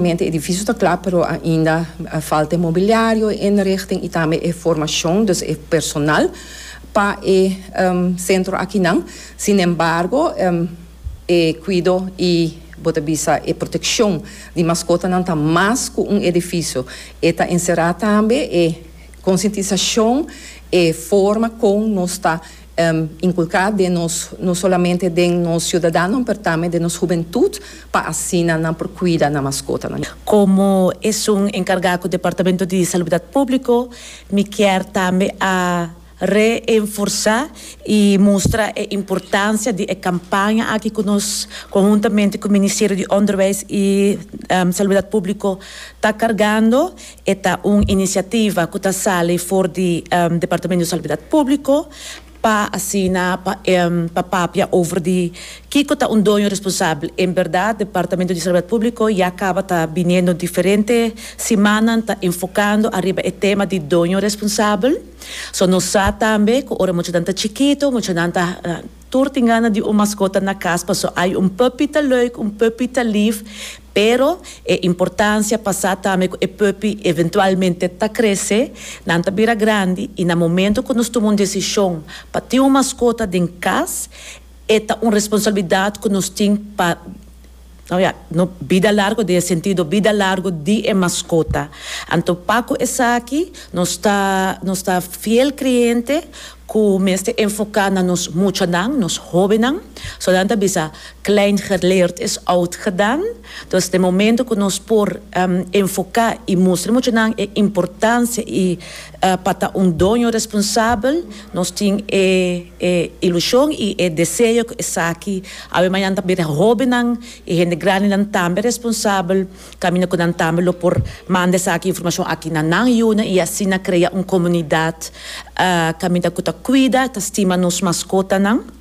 Mente edifisio ta kla pero ainda falta e mobiliario, e inrichting y tambe e formacion, dus e personal pa e centro akinan. Sin embargo e cuido y bo ta bisa e proteccion di mascotanan ta mas cu un edifisio. E ta encera tambe e concientisacion, e forma con nos ta. inculca den nos, no solamente den nos ciudadanonan, pero tambe den nos hubentud, pa asina nan por cuida nan mascotanan. Como esun encarga cu Departamento di Salubdad Publico, mi kier tambe a reenforza y mustra e importancia di e campaña aki cu nos, conhuntamente cu Ministerio di Onderwijs y Salubdad Publico, ta cargando. E ta un inisiativa ku ta sali for di Departamento di Salubridad Públiko pa asina pa papia over di kiko ta un doño responsabel. En berdad Departamento di Salubridad Públiko ya kaba ta biniendo diferente simannan ta enfokando ariba e tema di doño responsabel. So nos sa tambe ku ora muchanan ta chikito, muchanan ta. Tur tin gana di un maskota na kas paso ai un puppy ta leuk, un puppy ta lif, pero e importansia pa sa tambe ku e puppy eventualmente ta krese, nan ta bira grandi i na momento ku nos tuma un desishon pa tin un maskota den kas e ta un responsabilidat ku nos tin pa Bida largo den e sentido bida largo di e maskota. Anto pa ku esaki nos ta nos ta fiel kriente ku mester enfoká na nos muchanan, nos hóbennan. So nan ta bisa, Klein geleerd is oud gedaan. Dus den momento ku nos por enfoká i mustra e muchanan e importansia i Pa ta un doño responsabel nos tin e e ilushon i e deseo ku esaki awe mañana ta bira. Hóbennan i hende grandinan tambe responsabel kaminda ku nan tambe lo por manda esaki informashon aki na nan yunan i asina krea un komunidat kaminda ku ta kuida, ta stima nos maskotanan.